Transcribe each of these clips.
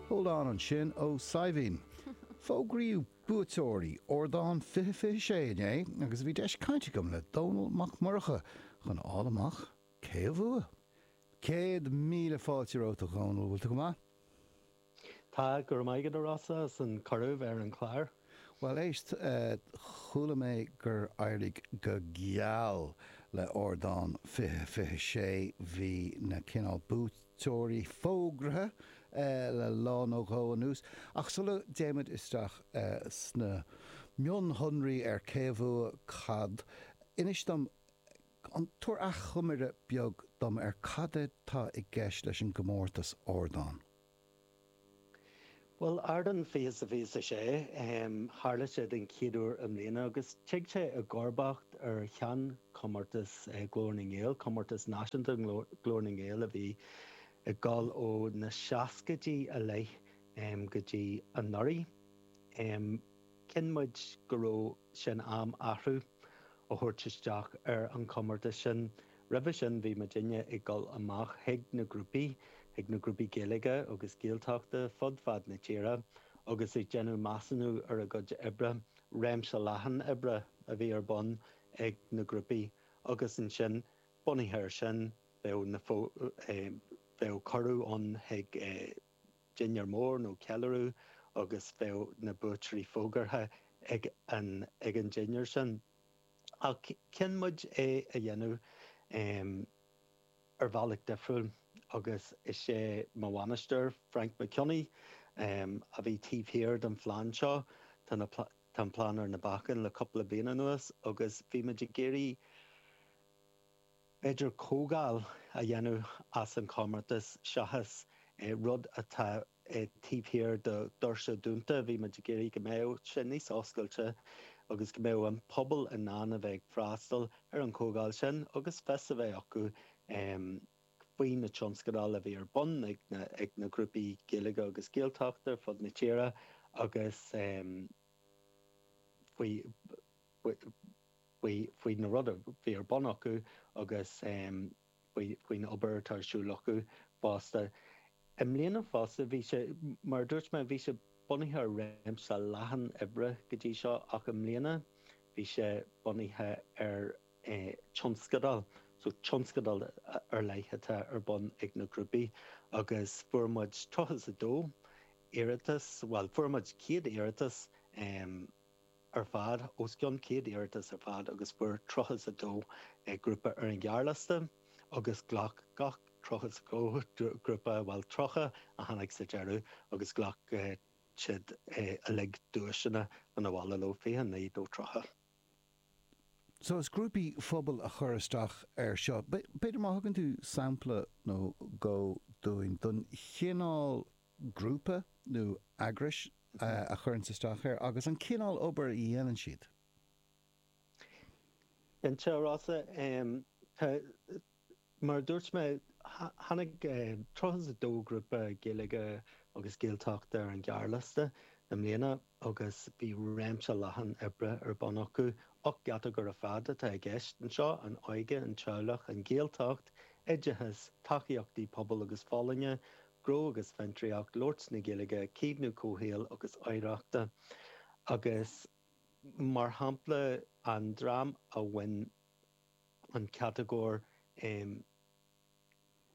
Hold on ansin ó Saidhbhín. Fógraíodh buaiteoirí Ardán 2026 inné agus bhí deis caint agam le Dónall Mac Murchadha chun a fháil amach cé a bhuaigh. Céad míle fáilte romhat a Dhónaill, bhfuil tú go maith? Tá, go raibh maith agat a Rossa as an cuireadh bheith ar an chlár. Bhuel éist, chuala mé gur éirigh go geal le ardán 2026 bhí na cineál buaiteoirí fógraithe le lá nó dhó anuas, ach sula dtéimid isteach sna mionshonraí ar cé a bhuaigh cad, inis dom, tabhair achoimre beag dom ar cad é atá i gceist leis an gcomórtas ardán? Bhuel, Ardán 20 sa 26, tharla sé den chéad uair i mbliana agus tig sé i gcomharbacht ar sheanchomórtas Ghlór na nGael, comórtas náisiúnta Ghlór na nGael a bhí ag dul ó na seascaidí i leith go dtí anuraidh. Chinn muid go raibh sé in am athrú a thabhairt isteach ar an chomórtas sin. Roimhe sin bhí moltóirí ag dul amach chuig na grúpaí, chuig na grúpaí Gaeilge agus Gaeltachta fud fad na tíre agus ag déanamh measúnú ar a gcuid oibre, réimse leathan oibre a bhí ar bun ag na grúpaí agus ansin bunaithe air sin bheadh na, bheadh cuireadh ann chuig eh. dinnéar mór nó ceiliúradh agus bheadh na buaiteoirí fógartha ag an ag an dinnéar sin. Ach chinn muid é a dhéanamh em ar bhealach difriúil agus is é mo bhainisteoir, Frainc Mac Cionnaith, em a bhí taobh thiar den phlean seo. Tá na Tá an plean ar na bacáin le cúpla bliain anuas agus bhí muid ag iarraidh, féidir comhdháil a dhéanamh as an chomórtas seachas rud atá taobh thiar de dhoirse dúnta. Bhí muid ag iarraidh go mbeadh sé níos oscailte agus go mbeadh an pobal in ann a bheith ag freastal ar an chomhdháil sin agus fios a bheith acu faoi na tionscadail a bhí ar bun ag na grúpaí Gaeilge agus Gaeltachta ar fud na tíre agus faoi faoi na rudaí a bhí ar bun acu agus faoin obair atá ar siúl acu fosta. I mbliana fosta, bhí sé, mar a dúirt mé, bhí sé bunaithe ar réimse leathan oibre go dtí seo ach i mbliana bhí sé bunaithe ar tionscadal, so tionscadal ar leith atá ar bun ag na grúpaí agus fuair muid 32 iarratas, bhuel fuair muid 100 iarratas. ar fad, os cionn 100 iarratas ar fad, agus fuair tríocha a dó grúpa ar an ghearrliosta agus ghlac gach tríocha a dó grúpa, bhuel tríocha a tháinig sa deireadh agus ghlac siad uilig duaiseanna 'na bhaile leo, 29 nó tríocha. So is grúpaí phobail a chuir isteach air seo. B'fhéidir má thugann tú sampla nó dhó dúinn den chineál. grúpa nó eagrais a chuireann isteach air agus an cineál obair a dhéanann siad. Cinnte, Rossa. Tá, mar a dúirt mé, tháinig 32 grúpa Gaeilge agus Gaeltachta ar an ghearrliosta i mbliana agus bhí réimse leathan oibre ar bun acu. Ocht gcatagóir ar fad atá i gceist anseo, an óige, an teaghlach, an Ghaeltacht, oideachas, tacaíochtaí pobail agus folláine, Gnó agus Fiontraíocht, labhairt na Gaeilge, Caomhnú Comhshaoil agus Oidhreachta, agus mar shampla an dream a bhain an chatagóir um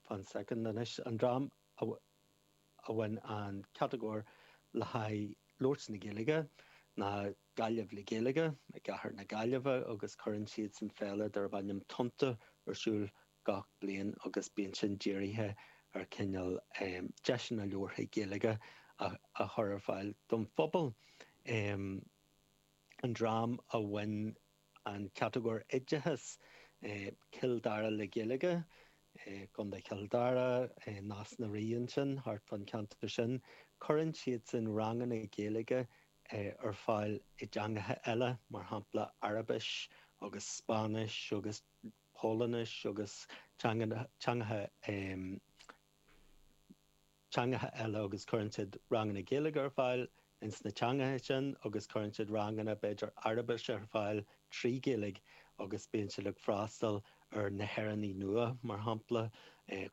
fan soicind anois an dream a bhain an chatagóir le haghaidh labhairt na Gaeilge ná Gaillimh le Gaeilge i gcathair na Gaillimhe agus cuireann siadsan féile darb ainm Tonnta ar siúl gach bliain agus bíonn sin dírithe ar chineál deiseanna labhartha Gaeilge a chur ar fáil don phobal. An dream a bhain an chatagóir oideachais, Cill Dara le Gaeilge, Contae Chill Dara, Nás na Rí ansin, thart fán cheantar sin, cuireann siadsan ranganna Gaeilge ar fáil i dteangacha eile, mar shampla Araibis agus Spáinnis agus. Polainnis agus teang teangacha eile agus cuireann siad ranganna Gaeilge ar fáil ins na teangacha sin agus cuireann siad ranganna b'fhéidir Araibis ar fáil trí Ghaeilge agus bíonn siad ag freastal ar na hÉireannaigh nua mar shampla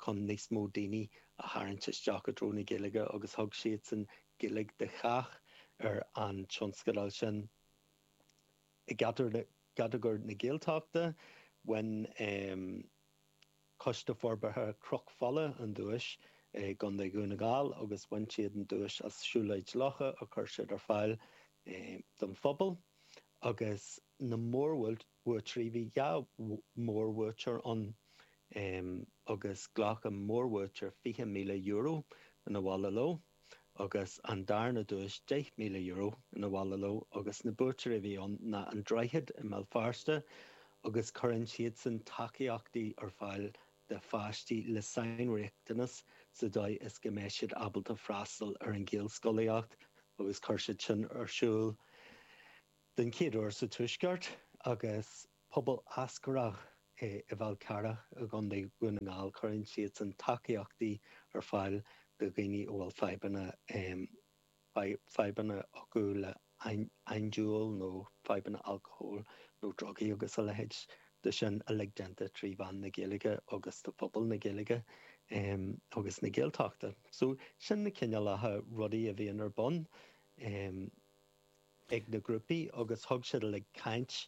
chun níos mó daoine a tharraingt isteach i dtreo na Gaeilge agus thug siadsan Gaeilge do chách ar an tionscadal sin. I gcatagóir na Gaeltachta, bhain Coiste Forbartha Chnoc Fola an duais i gContae Dhún na nGall agus bhain siad an duais as siúlóid locha a chuir siad ar fáil don phobal. Agus na mórbhuaiteoirí, bhí dhá mhórbhuaiteoir ann agus ghlac an mórbhuaiteoir €20,000 'na bhaile leo. agus an darna duais, €10,000, 'na bhaile leo agus na buaiteoirí a bhí ann ná An Droichead i mBéal Feirste agus cuireann siadsan tacaíochtaí ar fáil do pháistí le sainriachtanas sa dóigh is go mbeidh siad ábalta freastal ar an Ghaelscolaíocht agus chuir siad sin ar siúl den chéad uair sa tuaisceart agus Pobal Eascarrach ar an Fhál Carrach i gContae Dhún na nGall. Cuireann siadsan tacaíochtaí ar fáil do dhaoine a bhfuil fadhbanna fadhbanna acu le handúil nó fadhbanna alcohóil nó drugaí agus a leithéid de sin uilig déanta trí mheán na Gaeilge agus do phobal na Gaeilge agus na Gaeltachta. So sin na cineálacha rudaí a bhíonn ar bun ag na grúpaí agus thug siad uilig caint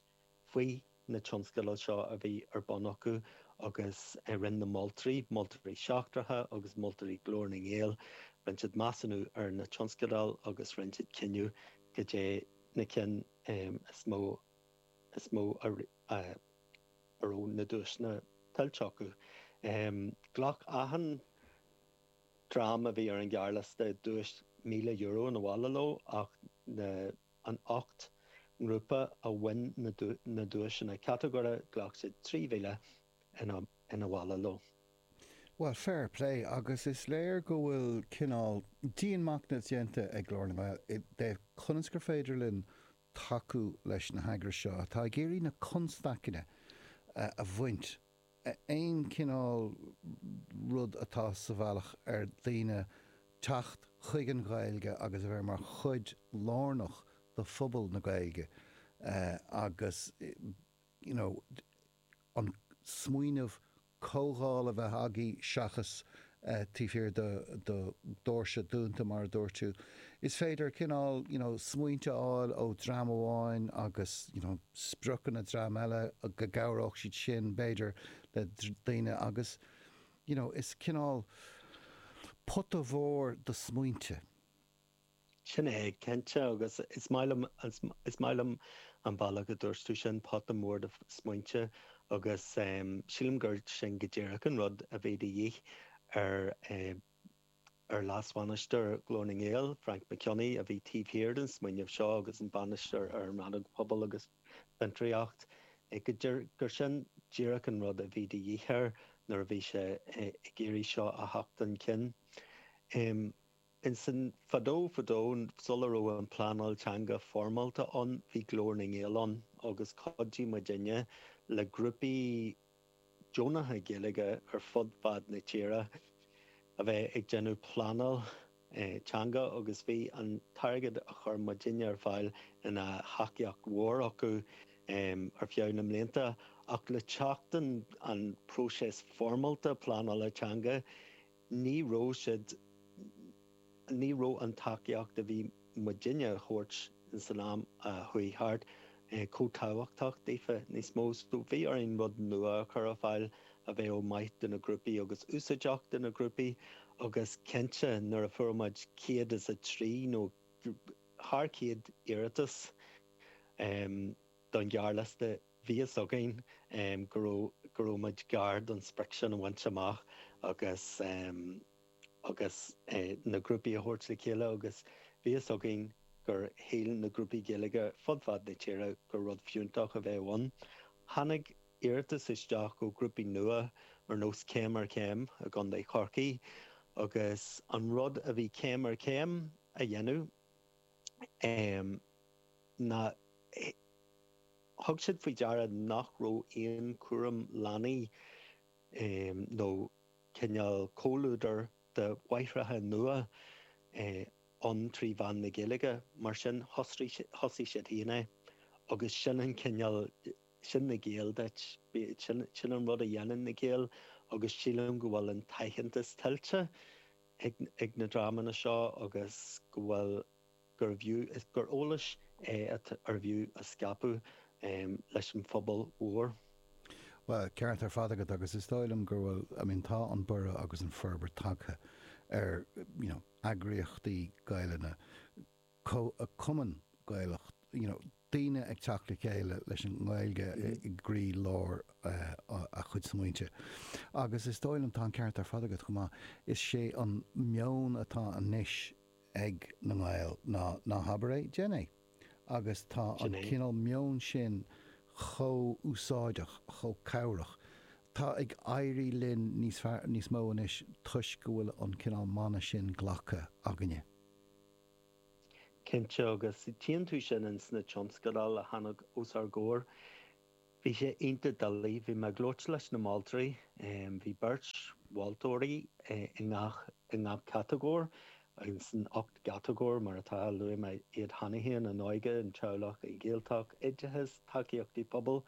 Faoi na tionscadail seo a bhí ar bun acu agus rinn na moltóirí, moltóirí seachtracha agus moltóirí Glór na nGael, rinn siad measúnú ar na tionscadail agus rinn siad cinneadh caidé na cinn is mó is mó a raibh na duaiseanna tuillte acu. Ghlac achan dream a bhí ar an ghearrliosta duais €1,000 'na bhaile leo ach na na hocht ngrúpa a bhain na duaiseanna catagóire ghlac siad 3,000 'na bhaile leo. Bhuel, fair play, agus is léir go bhfuil cineál dianmachnaimh déanta ag Glór na nGael i dtaobh conas gur féidir linn tacú leis na heagrais seo atá ag iarraidh na constaiceanna a bhaint. aon chineál rud atá sa bhealach ar dhaoine teacht chuig an Ghaeilge agus a bheith mar chuid lárnach de phobal na Gaeilge agus you know an smaoineamh comhdháil a bheith againn seachas taobh thiar de dhoirse dúnta, mar a dúirt tú. Is féidir cineál you know smaointe a fháil ó dhream amháin agus you know spriocanna dream eile, go gcabhródh siad sin b'fhéidir le daoine agus you know is cineál pota mór de smaointe. Sin é, cinnte, agus is maith liom, is maith liom an bealach a dúirt tú sin, pota mór de smaointe, agus sílim gur sin go díreach an rud a bhí de dhíth ar, ar leasbhainisteoir Ghlór na nGael, Frainc Mac Cionnaith, a bhí taobh thiar den smaoineamh seo agus an bainisteoir ar an Rannóg Pobal agus Fiontraíocht, gur sin díreach an rud a bhí de dhíth air nuair a bhí sé ag iarraidh seo a theacht chun cinn. Ansin, fadó fadó, sula raibh an pleanáil teanga foirmeálta ann, bhí Glór na nGael ann agus chuidigh muidinne le grúpaí deonacha Gaeilge ar fud fad na tíre a bheith ag déanamh pleanáil teanga agus bhí an t-airgead a chuir muidinne ar fáil ina thacaíocht mhór acu ar feadh na mblianta ach le teacht an próiseas foirmeálta pleanála teanga, Ní raibh siad, ní raibh an tacaíocht a bhí muidinne a thabhairt insan am a chuaigh thart, chomh tábhachtach daofa níos mó. So bhí orainn rud nua a chur ar fáil a bheadh maith do na grúpaí agus úsáideach do na grúpaí agus cinnte nuair a fuair muid céad is a trí nó thar chéad iarratas don ghearrliosta Bhí fhios againn go raibh muid gar don sprioc sin a bhaint amach agus na grúpaí a thabhairt le chéile agus bhí fhios againn gur shíl na grúpaí Gaeilge fud fad na tíre gur rud fiúntach a bheadh ann. Tháinig iarratais isteach ó ghrúpaí nua ar nós Céim ar Chéim i gContae Chorcaí agus an rud a bhí Céim ar Chéim a dhéanamh, um, ná thug siad faoi deara nach raibh aon chúram leanaí um, nó cineál comhluadar de mháithreacha nua eh ann trí mheán na Gaeilge, mar sin thosaigh, thosaigh siad féin é. Agus sin an cineál, sin na Gaeil duit, sin, sin an rud a dhéanann na Gaeil agus sílim go bhfuil an t-aitheantas tuillte. ag na dreamanna seo agus go bhfuil gurb é gur eolas é arbh fhiú a scaipeadh leis an phobal mhór. Bhuel, ceart ar fad agat agus is dóigh liom gur bhfuil, I mean tá an borradh agus an fhorbairt tagtha ar you know eagraíochtaí Gaelainne, Comh-Chumann Gaelach, you know daoine ag teacht le chéile leis an nGaeilge i gcroí lár a chuid smaointe. Agus is dóigh liom, tá an ceart ar fad agat chomh maith, is sé an meon atá anois ag na Gaeil ná, ná habair é, déan é. Agus tá an cineál meoin sin chomh úsáideach, chomh cabhrach. Tá ag éirí linn níos fearr, níos mó anois toisc go bhfuil an cineál mana sin glactha againne. cinnte agus tchíonn tú sin ins na tionscadail a tháinig os ár gcomhair. Bhí sé iontach doiligh. Bhí mé ag labhairt leis na moltóirí. Bhí beirt mholtóirí i ngach i ngach catagóir, sna hocht gcatagóir mar atá. Luaigh mé iad cheana féin, an óige, an teaghlach, an Ghaeltacht, oideachas, tacaíochtaí pobail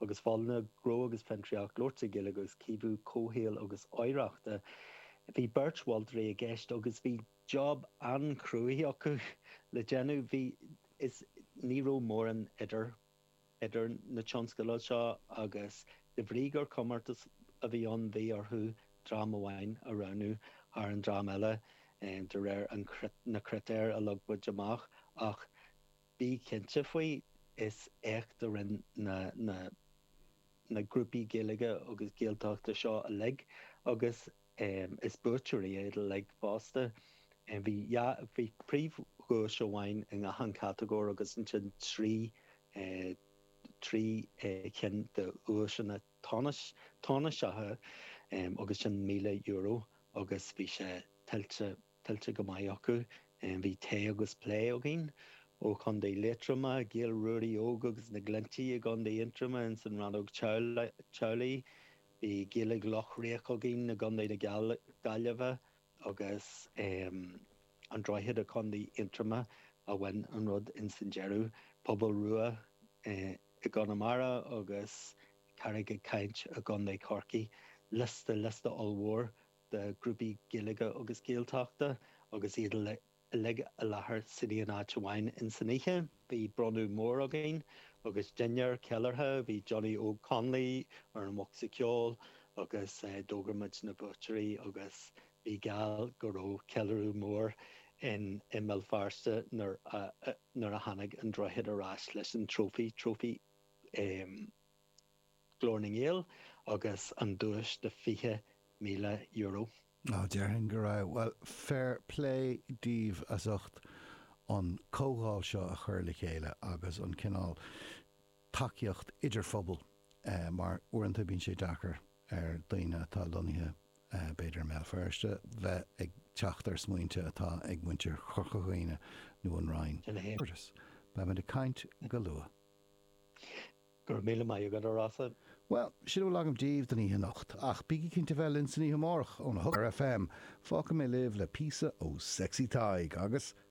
agus folláine, gnó agus fiontraíocht, labhairt na Gaeilge agus caomhnú comhshaoil agus oidhreachta. Bhí beirt mholtóirí i gceist agus bhí. job an-chruaidh acu le déanamh. Bhí, is ní raibh mórán idir, idir na tionscadail seo agus de bhrí gur comórtas a bhí ann bhí orthu dream amháin a roghnú thar an dream eile de réir an, na critéir a leag muid amach ach bí cinnte faoi, is éacht a rinne na, na, na grúpaí Gaeilge agus Gaeltachta seo uilig agus Is buaiteoirí iad uilig fosta. Bhí dhá, bhí príomhdhuais amháin i ngach aon chatagóir agus ansin trí, trí chinn de dhuaiseanna tánais, tánaiseacha agus sin €1,000 agus bhí sé tuillte tuillte go maith acu. Bhí Tae agus Plé againn ó Chontae Liatroma, Gaeil Ruairí Óg agus na Glinntí i gContae Aontroma ins an Rannóg Teaghlaigh, bhí Gaeilge Loch Riach againn i gContae na Gaillimhe agus An Droichead i Contae Aontroma a bhain an rud ins an deireadh, Pobal Rua i gConamara agus Carraig ag Caint i gContae Chorcaí, liosta, liosta ollmhór. de ghrúpaí Gaeilge agus Gaeltachta agus iad uilig i láthair san aon áit amháin in san oíche. Bhí bronnadh mór againn agus dinnéar ceiliúrtha, bhí Johnny Óg Connolly ar an bhocsa ceoil agus d'fhógair muid na buaiteoirí agus bíodh geall go raibh ceiliúradh mór in i mBéal Feirste nuair a nuair a tháinig an droichead ar ais leis an trófaí, trófaí eh. Glór na nGael agus an duais de €20,000. Á déarfainn go raibh. Bhuel, fair plé daoibh as ucht an comhdháil seo a chur le chéile agus an cineál tacaíocht idir phobal mar uaireanta bíonn sé deacair ar daoine atá lonnaithe b'fhéidir i mBéal Feirste bheith ag teacht ar smaointe atá ag muintir Chorca Dhuibhne nó an Rinn. Beimid ag caint go luath. Go raibh míle maith agat, a Rossan. Bhuel, sin a bhfuil agam daoibh don oíche anocht, ach bígí cinnte bheith linn san oíche amárach ó na hocht ar Raidió Fáilte FM, fágfaidh mé libh le píosa ó Sexy Tadhg agus.